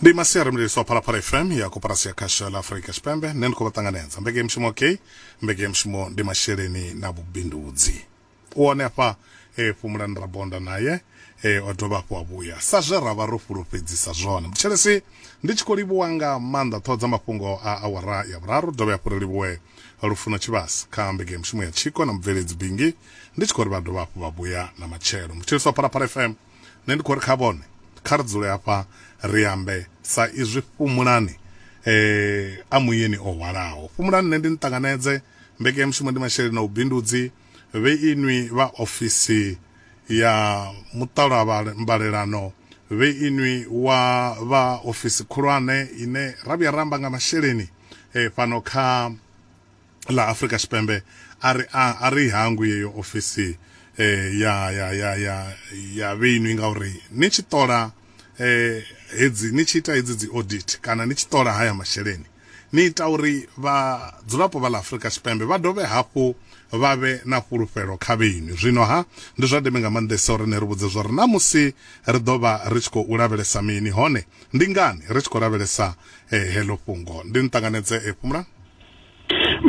ndi masiari mlilisi wa phalaphala fm ya koporasi ya khasho la afurika tshipembe nṋe ndi khou vha ṱanganedza mbekemushumo k mbekemushumo ndi masheleni na vhubindudzi u hone afha e fhumulani rabonda naye e o dovha hafhu a vhuya sa zwe ra vha ro fhulufhedzisa zwone mutshelesi ndi tshi khou livhuwa nga maanḓa ṱhoho dza mafhungo a awara ya vhuraru dovhe hafhu ri livhuwe lufuno tshivhasi kha mbekemushumo ya tshiko na mubveledzi bingi ndi tshi khou ri vha dovha hafhu vha vhuya na matshelo mutshelesi wa phalaphala fm Nṋe ndi khou ri kha vhone, kha ri dzule hafha ri ambe, sa izwi Fhumulani e a muyeni o hwalaho. Fhumulani nṋe ndi ni ṱanganedze. Mbekanyamushumo ndi masheleni a vhubindudzi. Vhe inwi vha ofisi ya muṱalwambalelano, vhe inwi wa vha ofisi khulwane ine ra vhuya ra amba nga masheleni fhano kha. ḽa Afrika Tshipembe a ri a, a ri hangwi yeyo ofisi eh, ya, ya, ya, ya, ya vheinwi ngauri ni tshi ṱola eh, hedzi ni tshi ita hedzi dzi audit kana ni tshi ṱola haya masheleni ni ita uri vhadzulapo vha ḽa Afrika Tshipembe vha dovhe hafhu vha vhe na fhulufhelo kha vheinwi. Zwino ha ndi zwa ndeme nga maanḓesa uri ni ri vhudze zwa uri na musi ri ḓo vha ri tshi khou lavhelesa mini hone ndi ngani ri tshi khou lavhelesa eh, heḽo fhungo. Ndi ni ṱanganedze eh, Phumulang?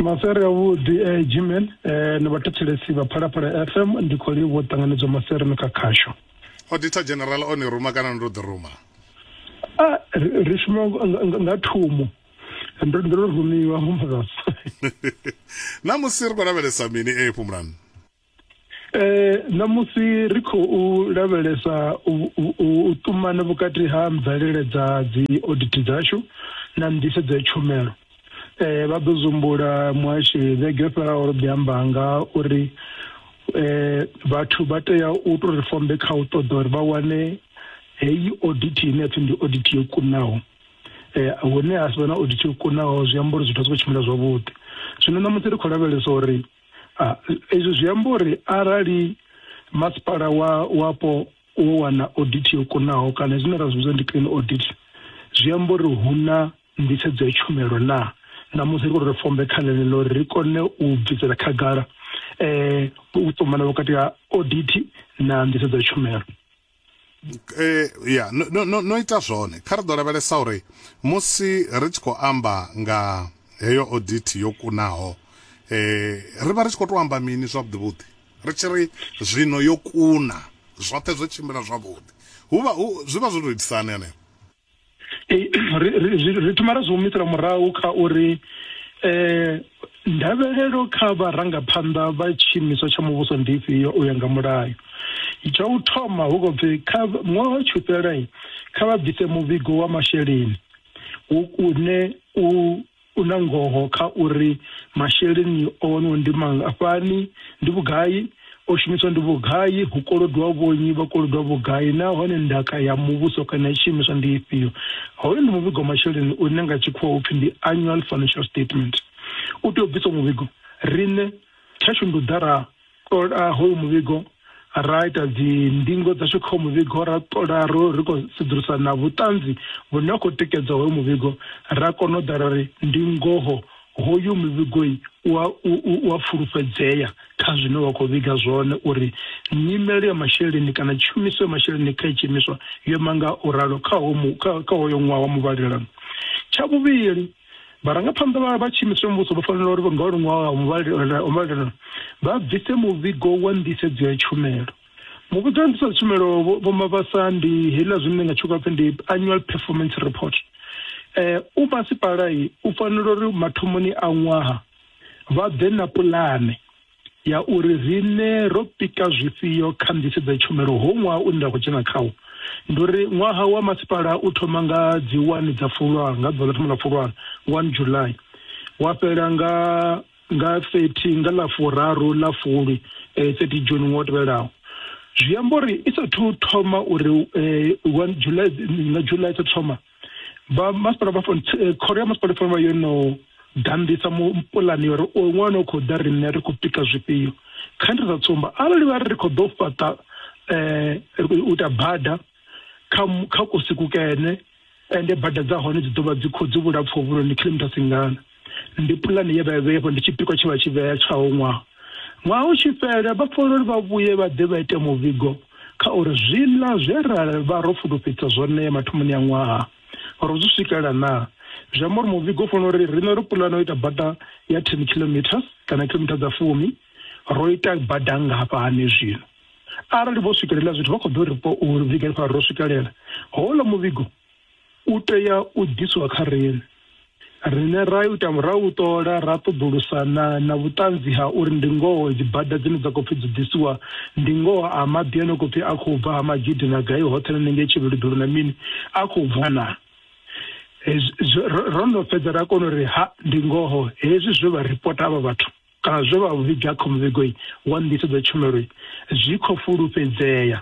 Masweri a vhuḓi eh, Gmail eh, ni vhathetshelesi vha Phalaphala FM ndi khou livhuwa ṱanganedzwa masweri no kha khasho. Auditor General o ni ruma kana ndo ḓi ruma? Ah, ri ri shuma nga- nga- nga thumo ndo ndo rumiwa murasa. Namusi ri khou lavhelesa mini e Phumulani? Eh namusi ri khou lavhelesa u ṱumana vhukati ha mvelele dza dzi audit dzashu na nḓisedzo ya tshumelo eh vha ḓo zumbula muhashi vhege fhelaho ro ḓi amba nga uri eh vhathu vha tea u to ri fombe kha u ṱoḓa uri vha wane heyi audit ine pfi ndi audit yo kunaho eh hune ha sivhe na audit yo kunaho zwi amba uri zwithu zwi khou tshimbila zwavhuḓi zwino namusi ri khou lavhelesa uri Ah, ezwi zwi amba uri arali masipala wa wapo wo wana audit yo kunaho kana zwine ra zwi vhidza ndi clean audit zwi amba uri hu na nḓisedzo ya tshumelo na na musi ri khou ri fombe kha ḽeneḽo uri ri kone u bvisela khagala um u ṱumana vhukati ha audit na nḓisedzo ya tshumelo eh, ya no, no, no, no ita zwone kha ri ḓo lavhelesa uri musi ri tshi khou amba nga heyo audit yo kunaho eh, ri vha ri tshi khou tou amba mini zwavhuḓi vhuḓi ri tshi ri zwino yo kuna zwoṱhe zwo tshimbila zwavhuḓi hu vha hu- zwi vha zwo tou itisani hanefho ri thoma ra zwi humisela murahu kha uri eh ndavhelelo kha vharangaphanḓa vha tshiimiswa tsha muvhuso ndi ifhio u ya nga mulayo tsha u thoma hu khou pfi kha ṅwaha wa tshufhela kha vha bvise muvhigo wa masheleni une u U na ngoho kha uri masheleni o waniwa ndi mangafhani, ndi vhugai, o shumiswa ndi vhugai, hu kolodwa vhonyi, vha kolodwa vhugai nahone ndaka ya muvhuso kana ya tshiimiswa ndi ifhio. Hoyu ndi muvhigo wa masheleni une nga tshikhuwa hu pfi ndi Annual Financial Statement. U tea u bviswa muvhigo, riṋe tshashu ndi u ḓa ra ṱola hoyu muvhigo ra ita dzindingo dzashu kha muvhigo ra ṱola ro ri khou sedzulusa na vhuṱanzi vhune ha khou tikedza hoyo muvhigo ra kona u ḓa ra ri ndi ngoho hoyu muvhigoi u a fulufhedzea kha zwine wa khou vhiga zwone uri nyimelo ya masheleni kana tshumiso ya masheleni kha itshiimiswa yo manga u ralo kha hoyo ṅwaha wa muvhalelano tsha vhuvhili vharangaphanḓa vha tshiimiswa muvhuso vha fanela uri nga luṅwaho ha muvhalelano vha bvise muvhigo wa nḓisedzo ya tshumelo muvhigo wa nḓisedzo ya tshumelo vho mabasa ndi heiḽa zwine nga tshikho pfhi ndi annual performance report eh u masipala u fanela uri mathomoni a ṅwaha vha ḓe na pulane ya uri riṋe ro pika zwifhio kha nḓisedzo ya tshumelo ho ṅwaha une ra khou dzhena khawo ndi uri ṅwaha wa masipala u thoma nga dzi wani dza fulwana nga ḓuvha ḽa thoma ḽa fulwana one july wa fhela nga nga 30 nga ḽa furaru ḽa fulwi eh, 30 june ṅwaha u tevhelaho zwi amba uri i sathu thoma uri eh, one july na july sa thoma vha masipala vha fone eh, khoro ya masipala fone vha yo no ganḓisa mu- pulani yo ri o ṅwana o khou ḓa riṋe ri khou pika zwifhio kha ndi sa tsumba arali vha ri ri khou ḓo fhaṱa um u ita bada kha mu- kha kusi kukene ende bada dza hone dzi ḓo vha dzi khou dzi vhulapfu vhuloni kilometres ngana Ndi pulane ye vha i vhea hafho, ndi tshipikwa tshe vha tshi vhea tsha u ṅwaha. Ṅwaha u tshi fhela, vha fanela uri vha vhuye vha ḓe vha ite muvhigo kha uri zwiḽa zwe ra vha ro fulufhedzisa zwone mathomoni a ṅwaha, ro zwi swikelela naa. Zwi amba uri muvhigo u fanela uri, riṋe ro pulana u ita bada ya ten kilometres kana kilometer dza fumi, ro ita bada nngafhani zwino. Arali vho swikelela hezwo zwithu, vha khou ḓo ri vhiga uri ro swikelela houḽa muvhigo. u tea u ḓiswa kha riṋe. Riṋe ra ita ra u ṱola ra ṱoḓulusa na na vhuṱanzi ha uri ndi ngoho dzi bada dzine dza khou pfi dzi ḓisiwa ndi ngoho a maḓi a no khou pfi a khou bva ha magidi na gai hoṱhe na nenge tshivhiludulu na mini a khou bva na ro no fhedza ra kona uri ha ndi ngoho hezwi zwe vha ripota avha vhathu Kana zwe vha vhiga kha muvhigo wa nḓisedzo ya tshumelo zwi khou fulufhedzea?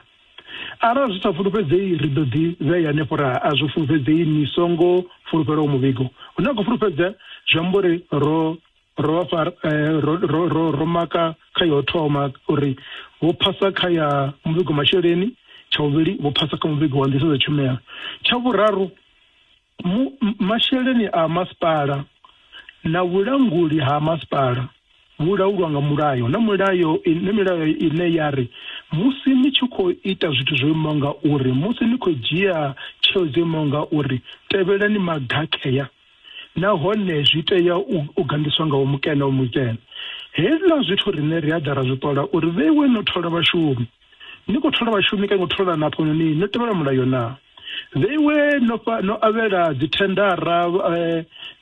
Arali zwi sa fulufhedzei, ri ḓo ḓi vhea henefho ra a zwi fulufhedzei. Ni songo fulufhela uwo muvhigo une wa khou fulufhedzea, zwi amba uri ro ro vha fha ro ro ro ro maka kha ya u thoma uri vho phasa kha ya muvhigo masheleni, tsha vhuvhili vho phasa kha muvhigo wa nḓisedzo ya tshumelo, tsha vhuraru Mu, masheleni a masipala na vhulanguli ha masipala vhu laulwa nga mulayo na mulayo na milayo ine ya ri musi ni tshi khou ita zwithu zwo imaho nga uri musi ni khou dzhia tsheo dzo imaho nga uri tevhelani magakhea nahone zwi tea u gandiswa nga mukene wa mukene hezwiḽa zwithu rine ri a ḓa ra zwi ṱola uri vheiwe no thola vhashumi Ni khou thola vhashumi kana ni khou thola na hafhanoni no tevhela mulayo na? The iwe no fha no avhela dzithendara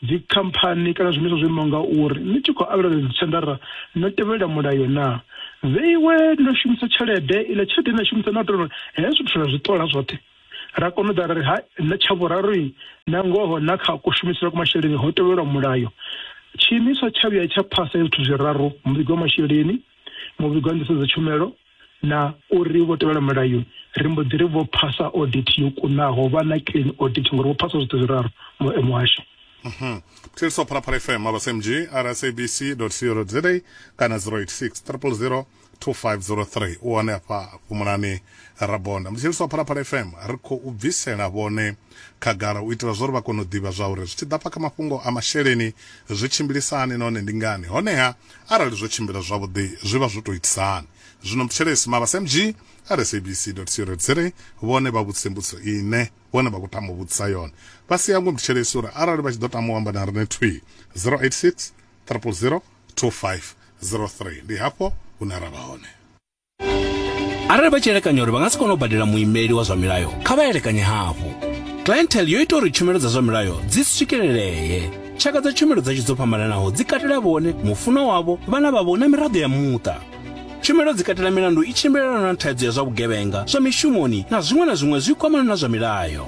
dzi khamphani kana zwiimiswa zwo imaho nga uri ni tshi khou avhela dzithendara no tevhela mulayo na? The iwe no shumisa tshelede iḽa tshelede na shumisa na tou hezwi zwithu ra zwi ṱola zwoṱhe ra kona u ḓa ra ri ha na tsha vhuraru na ngoho na kha kushumisele kwa masheleni ho tevhelwa mulayo tshiimiswa tsha vhuya tsha phasa hezwi zwithu zwiraru muvhigo wa masheleni muvhigo wa nḓisedzo tshumelo na uri vho tevhela mulayo ri mbo ḓi ri vho phasa audit yo kunaho vha na clean audit ngori vho phasa zwoṱhe zwiraru muhasho mhm. Thilso Phalaphala FM aba SMG rsabc.co.za kana 086 000 2503 u hone afha fhumulani rabonda Mthilso Phalaphala FM ri khou bvisela vhone khagala u itela zwauri vha kone u ḓivha zwauri zwi tshi ḓa afha kha mafhungo a masheleni zwi tshimbilisa hani nahone ndi ngani, honeha arali zwo tshimbila zwavhuḓi zwi vha zwo tou itisa hani. Zwino Mthetshelesi Mabasa MG a re sabc.co.za vhone vha vhudzise mbudziso ine vhone vha khou tama u vhudzisa yone. Vha si hangwe Mthetshelesi uri arali vha tshi ḓo tama u amba na riṋe thwii, 086 000 2503 ndi hafho hune ra vha hone. arali vha tshi elekanya uri vha nga si kone u badela muimeli wa zwa milayo kha vha elekanye hafhu clientele yo ita uri tshumelo dza zwa milayo dzi swikelelee tshaka dza tshumelo dzashu dzo fhambananaho dzi katela vhone mufunwa wavho vhana vhavho na miraḓo ya muṱa tshumelo dzi katela milandu i tshimbilelana na thaidzo ya zwa vhugevhenga zwa mishumoni na zwiṅwe na zwiṅwe zwi kwamana na zwa milayo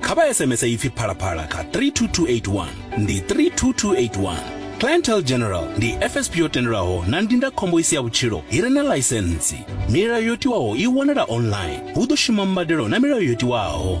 kha vha sms ipfi phalaphala kha 32281 ndi 32281 clientel general ndi fsp yo tendelwaho na ndindakhombo i si ya vhutshilo i re na ḽaisentsi milayo yo tiwaho i wanala online hu ḓo shuma mbadelo na milayo yo tiwaho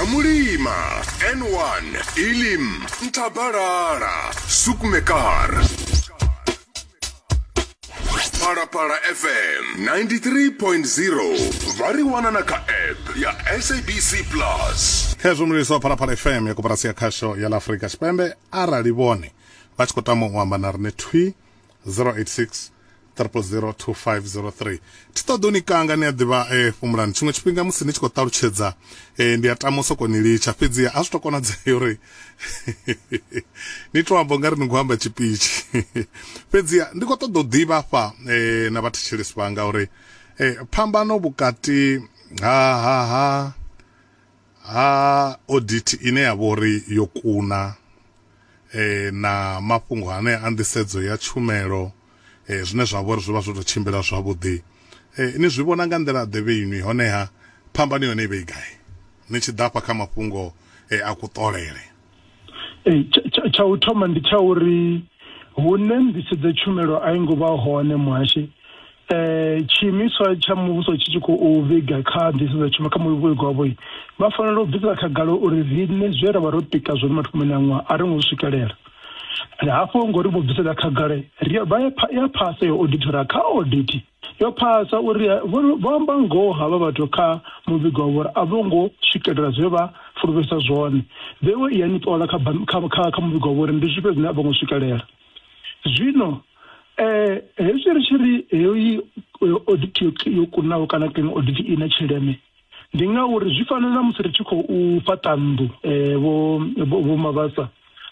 amulima n1 ilim ntabalala sukumekar phalaphala fm 93.0 vha ri wana na kha app ya sabc plus khezwo mlilisi wa phalaphala fm ya koporasi ya khasho ya la afurika tshipembe arali vhone vha tshi khou tama u amba na rine thwi 086 triple zero two five zero three thi ṱoḓo ni kanga ni a ḓivha eh, fhumulani tshiṅwe tshifhinga musi ni tshi khou ṱalutshedza eh, ndi a tama u soko ni litsha fhedzi a zwi to konadzea uri ni to amba ungari ni khou amba tshipitshi fhedzi ndi khou ṱoḓa u ḓivha afha eh, na vhathetshelesi vhanga uri eh, phambano vhukati ha ha ha ha audit ine ya vha uri yo kuna eh, na mafhungo ane a nḓisedzo ya tshumelo zwine zwa vhori zwi vha zwo tou tshimbila zwavhuḓi ni zwi vhona nga nḓila ḓe vheinwi honeha phambano yone i vhe i gai ni tshi ḓa afha kha mafhungo a kuṱolele tsha u thoma ndi tsha uri hune nḓisedzo tshumelo a i ngo vha hone muhashi um tshiimiswa tsha muvhuso tshi tshi khou vhiga kha nḓisedzo tshumelo kha muvhigo wavho vha fanela u bvisela khagala uri riṋe zwe ra vha ro pika zwone mathomoni a ṅwaha a ri ngo swikelela ri hafho ngo ri vho bvisela khagala ri vha ya phasa yo auditora kha audit yo phasa uri eh, vho amba ngoho havha vhathu kha muvhigo wavho uri a vho ngo swikelela zwe vha fulufhesa zwone vhewe i ya ni ṱola kha muvhigo wavho uri ndi zwifhe zwine a vho ngo swikelela zwino um eh, hezwi ri tshi ri heyi audit yo kunaho kana kiḽini audit i na tshileme Ndi ngauri zwi fana na musi ri tshi khou fhaṱa nnḓu vho vho mavhasa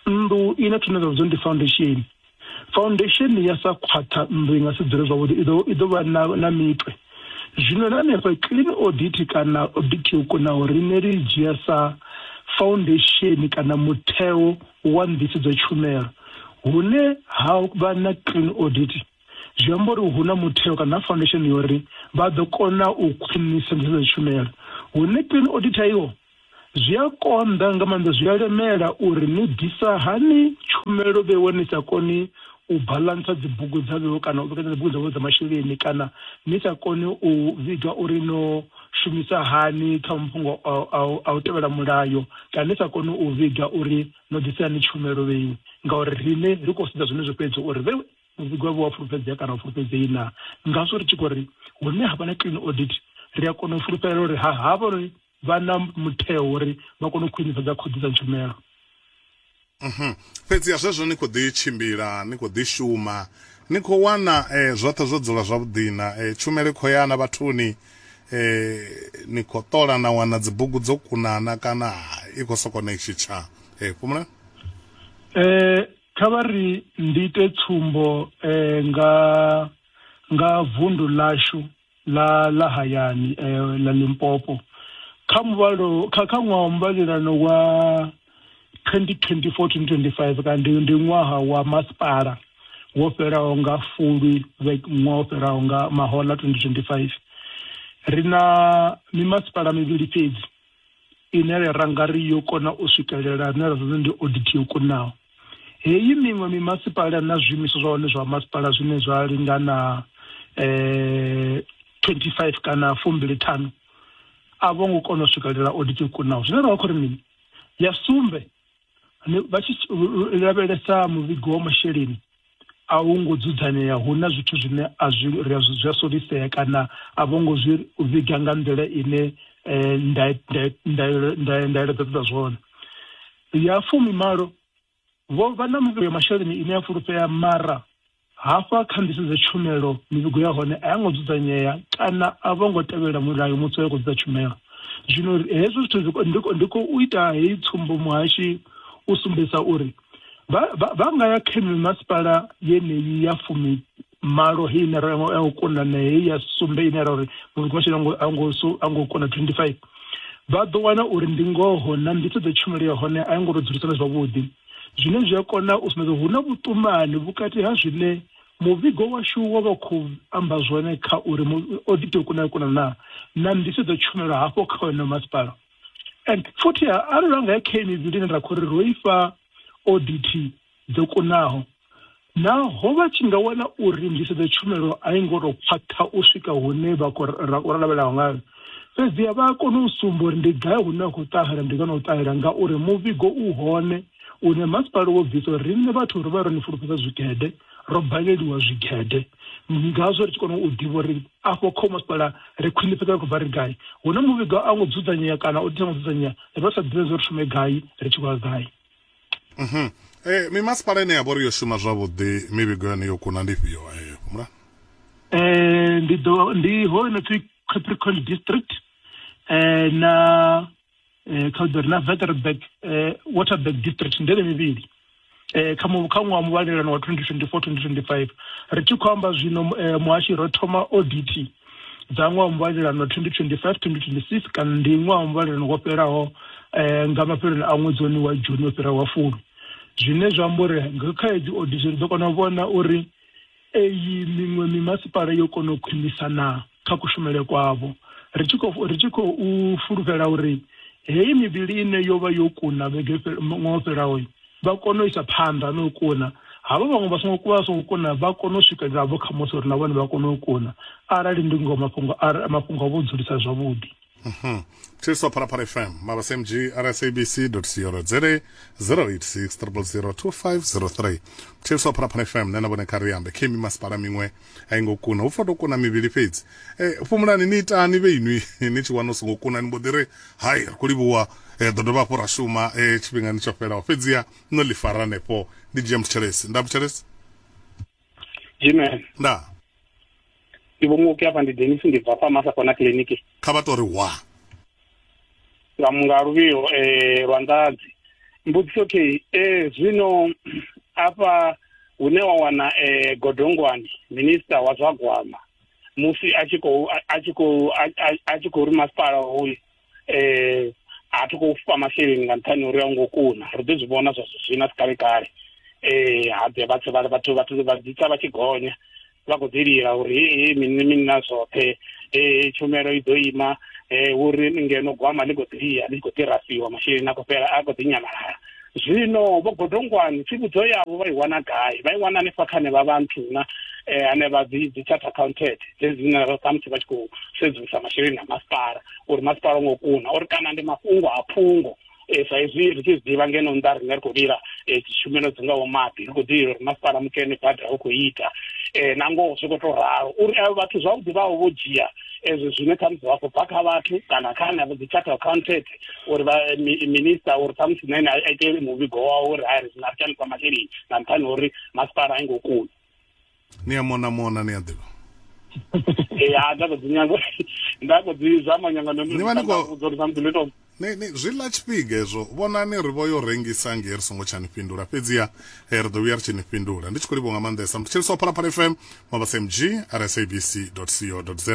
nnḓu i na tshine zwa vhidzwa ndi foundation foundation ya sa khwaṱha nnḓu i nga si dzule zwavhuḓi i ḓo i ḓo vha na na mitwe zwino na hanefha clean audit kana audit yo kunaho riṋe ri dzhia sa foundation kana mutheo wa nḓisedzo tshumelo hune ha vha na clean audit zwi amba uri hu na mutheo kana na foundation yo uri vha ḓo kona u khwinisa nḓisedzo tshumelo hune clean audit iwo zwi a konḓa nga maanḓa zwi a lemela uri ni ḓisa hani tshumelo vhewe ni sa koni u balantsa dzibugu dza vhewe kana u vhekanya dzibugu dza vhewe dza masheleni kana ni sa koni u vhiga uri no shumisa hani kha mafhungo a u tevhela mulayo kana ni sa koni u vhiga uri no ḓisa hani tshumelo vhewe ngauri riṋe ri khou sedza zwenezwo fhedzi uri vhewe Musi gwevho wa fulufhedzea kana u fulufhedzei na ngazwo ri tshi khou ri hune ha vha na clean audit ri a kona u fulufhelela uri ha havhanoni vha na mutheo uri vha kone u khwinifhadza khoḓi dza tshumelo. Mhm. Fhedziha zwezwo ni khou ḓi tshimbila, ni khou ḓi shuma, ni khou wana e, zwoṱhe zwo dzula zwavhuḓina, e, tshumelo i khou ya na vhathuni, e, ni khou ṱola na wana dzibugu dzo kunana kana i khou sokou ni tshitsha. E, fhumulani. E, Kha vha ri ndi ite tsumbo nga nga vundu ḽashu ḽa ḽa hayani ḽa Limpopo. Kha muvhalo kha kha ṅwaha wa muvhalelano wa 2024-2025 kana ndi ndi ṅwaha wa masipala wo fhelaho nga Fulwi ṅwaha wo fhelaho nga mahoḽa 2025, ri na mimasipala mivhili fhedzi ine ya rangari yo kona u swikelela ane ra zwi ndi audit yo kunaho heyi miṅwe mimasipala na zwiimiswa zwa hone zwa masipala zwine zwa lingana eh 25 kana fumbili thanu a vho ngo kona u swikelela audit yo kunaho zwine ra vha khou ri mini ya sumbe vha tshi lavhelesa muvhigo wa masheleni a hu ngo dzudzanea hu na zwithu zwine a zwi ri a zwi a solisea kana a vho ngo zwi vhiga nga nḓila ine ndaela dza ṱoḓa zwone ya fumi malo vho vha na muvhigo ya masheleni ine ya fulufhea mara Hafha kha ndi sedze tshumelo, mivhigo ya hone a yo ngo dzudzanyea kana a vho ngo tevhelela mulayo musi vha tshi khou ḓisa tshumelo. Zwino ri, hezwo zwithu zwi, ndi, ndi khou ita heyi tsumbo muhashi u sumbedzisa uri vha, vha, vha nga ya kha mimasipala yeneyi ya fumi malo heyi ine ra ya u kunda na heyi ya sumbe ine ra uri muvhigo washu a ngo, a ngo, a ngo kunda 25 vha ḓo wana uri ndi ngoho na nḓisedzo tshumelo ya hone a yo ngo tou dzulisana zwavhuḓi. zwine zwi a kona u sumbedza hu na vhuṱumani vhukati ha zwine muvhigo washu wa vha khou amba zwone kha uri o ḓi tea u kuna kuna na na nḓisedzo tshumelo hafho kha wena masipala and futhi arali ra nga ya kha mivhili ine ra khou ri ro ifha audit dzo kunaho Naho vha tshi nga wana uri nḓisedzo tshumelo a i ngo tou khwaṱha u swika hune vha khou lavhelelaho ngayo, fhedziha vha a kona u sumba uri ndi gai hune ha khou ṱahela ndi kana u ṱahela ngauri muvhigo u hone une masipala wo bvisa uri riṋe vhathu ri vha ro ni fulufhedza zwigede, ro baleliwa zwigede. Ngazwo ri tshi kona u ḓivha uri afho kha masipala ri khwinifhadza ri khou bva ri gai. Hu na muvhigo a ngo dzudzanyea kana o tea ngo dzudzanyea, ri vha ri sa ḓivhi zwo ri shume gai ri tshi khou ya gai. Mhm. Eh mimasipala ine ya vhori yo shuma zwavhuḓi mivhigo yone yo kuna ndi fhio eh mula? Eh ndi do ndi ho no pfi Capricorn district eh na eh kha ḓori na Waterberg eh Waterberg district ndele mivhili. Eh kha mu kha ṅwaha muvhalelano wa 2024 2025 ri tshi khou amba zwino eh, muhashi ro thoma audit dza ṅwaha wa muvhalelano 2025-2026 kana ndi ṅwaha wa muvhalelano wo fhelaho eh, nga mafheloni a ṅwedzi wone wa juni wo fhiraho wa fulu zwine zwa amba uri nga kha hedzi odisi ri ḓo kona u vhona uri eyi miṅwe mimasipala yo kona u khwinisa na kha kushumele kwavho ri tshi khou ri tshi khou fulufhela uri heyi mivhili ine yo vha yo kuna vhege fhe- ṅwaha o fhelaho vha kone u isa phanḓa na u kuna, havho vhaṅwe vha songo vha songo kuna vha kone u swikelela vho kha Mose uri na vhone vha kone u kuna arali ndi ngoho mafhungo mafhungo avho dzulisa zwavhuḓi. Mhm. Thuso Phalaphala FM, Mabasmg, rsabc co za 0860002503. Thuso Phalaphala FM, nṋe na vhone kha ri ambe. Kimmy Masipala miṅwe. a i ngo kuna hu pfa to kuna mivhili fhedzi e, fhumulani ni itani vhe inwi ni tshi wana u songo kuna ni mbo ḓi ri hai ri khou livhuwa e, ḓo dovha hafhu ra shuma e, tshifhingani tsho fhelaho fhedziha no ḽi fara hanefho ndi dzhia muthelesi nda muthelesi Amen. nda Ndi vho muoki afha ndi Dennis ndi bva fha Masakona kiliniki. kha vha tou ri wa Ramunga Luvhiho eh lwa Nḓadzi mbudziso okay eh zwino afha hune wa wana eh Godongwani minister wa zwa gwama musi a tshi khou a tshi khou a tshi khou ri masipala hoyu eh a thi khou fha masheleni nga nṱhani uri a ngo kuna ri ḓo zwi vhona zwa zwina si kale kale eh ha ḓe vhathu vha vhathu vhathu vha dzitsa vha tshi gonya vha khou ḓi lila uri hei hei mini mini na zwoṱhe hei tshumelo i ḓo ima um uri ngeno gwama ḽi khou ḓi lia ḽi tshi khou ḓi rasiwa masheleni a khou fhela a khou ḓi nyamalala zwino vho godongwani tsivhudzo yavho vha i wana gai vha i wana hanefha kha ne vha vha nthuna um hanevha dzi dzi chart accounted dzedzi dzine vha khamusi vha tshi khou sedzulusa masheleni a masipala uri masipala o ngo kuna uri kana ndi mafhungo a phungo e, sa izwi ri tshi zwi ḓivha ngeno nnḓa ri nga ri khou lila e, tshumelo dzi ngaho maḓi ri khou ḓi lila uri masipala mukene bada hu khou ita um na ngoho zwi khou tou ralo uri avho vhathu zwavhuḓi vhavho vho dzhia ezwo zwine khamusi vha khou bva kha vhathu kana kha henevho dzi charter accountant uri minista uri khamusi na ene a ite muvhigo wawo uri hai ri na ri shandisa masheleni nga nṱhani uri masipala a i ngo kuni ni a mona mona ni a ḓivha ya nda khou dzi nyanga nda khou dzi zama nyanga ndo Ni vha ni khou- ndi something ndo tou ni ni zwi ḽa tshifhiga hezwo vhonani ri vho yo rengisa nge ri songo tsha ni fhindula fhedziha eh, ri ḓo vhuya ri tshi ni fhindula ndi tshi khou livho nga maanḓesa mutsheliso wa phalaphala fm mabasa mg rsabc co za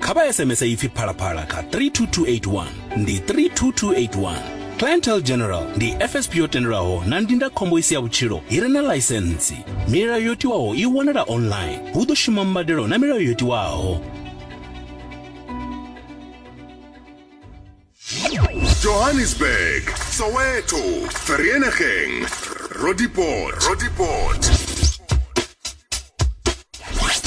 kha vha sms ipfi phalaphala kha 32281 ndi 32281 clientel general ndi fsp yo tendelwaho na ndindakhombo i si ya vhutshilo i re na ḽaisentsi milayo yo tiwaho i wanala online hu ḓo shuma mbadelo na milayo yo tiwaho johannesburg soweto vereeniging rodipoort rodipoort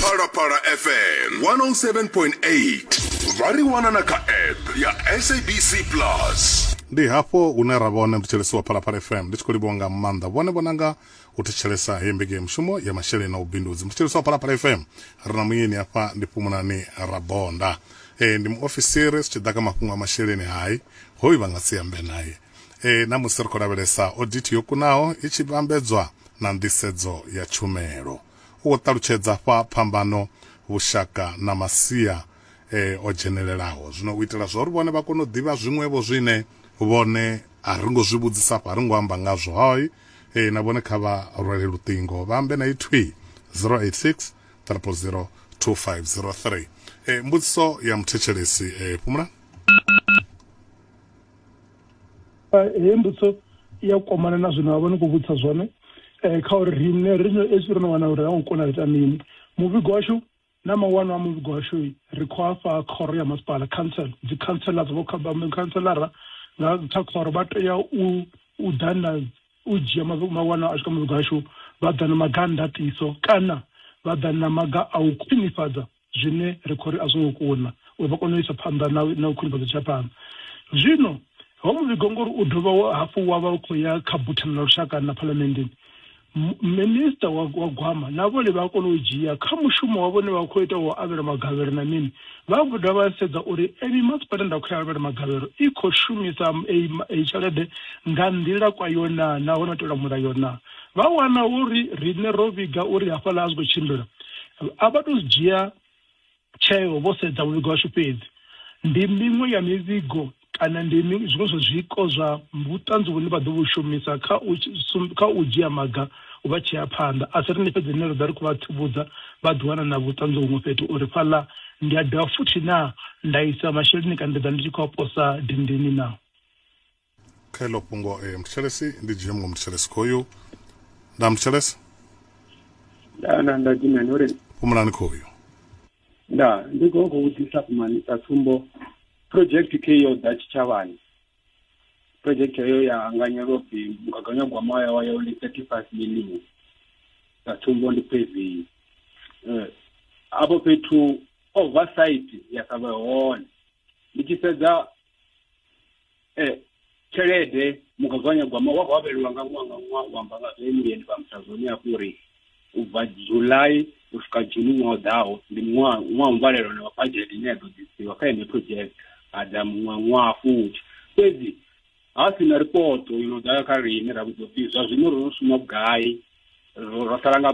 phalaphala fm 107.8 vha ri wana na kha app ya sabc plus ndi hafho hune ra vha hone mthetshelesi wa phalaphala fm ndi tshi khou livhuwa nga maanḓa vhone vhonanga u thetshelesa heyi mbekanyamushumo ya masheleni na vhubindudzi muthetshelesi wa phalaphala fm ri na muyeni hafha ndi pfumunani rabonda e, ndi muofisiri zwi tshi ḓa kha mafhungo a masheleni hai hoyu vha nga si ambe naye e, na musi ri khou lavhelesa odithi yo kunaho i tshi vhambedzwa na nḓisedzo ya tshumelo u khou ṱalutshedza fha phambano vhushaka na masia e, o dzhenelelaho zwino u itela zwa uri vhone vha kone u ḓivha zwiṅwevho zwine vhone a ri ngo zwi vhudzisa afho a ri ngo amba ngazwo hoi e, na vhone kha vha rwele luṱingo vha ambe na ithwi 086 000 2503 e, mbudziso ya muthetshelesi e, fhumula heyi mbudziso ya kwamana na zwine vha vha ni khou vhudzisa zwone um kha uri riṋe ri no esi ro no wana uri ha ngo kona u ita mini muvhigo washu Na mawanwa a muvhigo washu ri khou a fha khoro ya masipala, council. Dzikhantsela dza vhokhanshelara nga kha khoro vha tea u u ḓa na u dzhia mawanwa ashu kha muvhigo washu, vha ḓa na maga a ndaṱiso kana vha ḓa na maga a u khwinifhadza zwine ri khou ri a zwo ngo kuna uri vha kone u isa phanḓa na na u khwinifhadza tshi ya phanḓa. Zwino ho muvhigo ngori u dovha hafhu wa vha u khou ya kha buthano ḽa lushaka na phalamenndeni, minista wa gwama na vhone vha a kona u dzhia kha mushumo wa vhone vha khou ita wa avhela magavhelo na mini vha khou dovha vha sedza uri eyi masipala nda khou ya avhela magavhelo i khou shumisa eyi tshelede nga nḓila kwa yo naa nahone o tevhela mulayo naa vha wana uri riṋe ro vhiga uri hafhaḽa a zwi khou tshimbila a vha tou zwi dzhia tsheo vho sedza muvhigo washu fhedzi. Ndi miṅwe ya mivhigo kana ndi zwiṅwe zwa zwiko zwa vhuṱanzi vhune vha ḓo vhu shumisa kha u kha u dzhia maga u vha tshea phanḓa. A si riṋe fhedzi rine ra ḓa ri khou vha tsivhudza vha ḓiwana na vhuṱanzi huṅwe fhethu uri fhaḽa ndi a dovha futhi naa nda isa masheleni kana ndi ḓa ndi tshi khou a posa dindini naa. kha iḽo fhungo eh, muthetshelesi ndi dzhie muṅwe muthetshelesi khoyu nda muthetshelesi nda nda nda dzimani uri fhumulani khoyu nda ndi khou khou vhudzisa fhumani sa tsumbo project ke yo ḓa tshitshavhani project heyo ya anganyelwa upfi mugaganyagwama wa ya wa yo ndi thirty five million sa tsumbo ndi paving um afho fhethu oversight ya sa vhe hone ndi tshi sedza eh, tshelede mugaganyagwama wa khou avhelelwa nga ṅwaha nga ṅwaha u amba nga zwe muyeni vha mutsa zwone hafhu uri u bva july u swika juni ṅwaha ḓaho ndi ṅwaha ṅwaha mvalelo na bajete ine ya ḓo ḓisiwa kha ene project a ḓa muṅwe ṅwaha futhi fhedzi ha si na ripoto yo no ḓa kha riṋe ra vhudzwa pfhi zwa zwino ro no shuma vhugai ro sala nga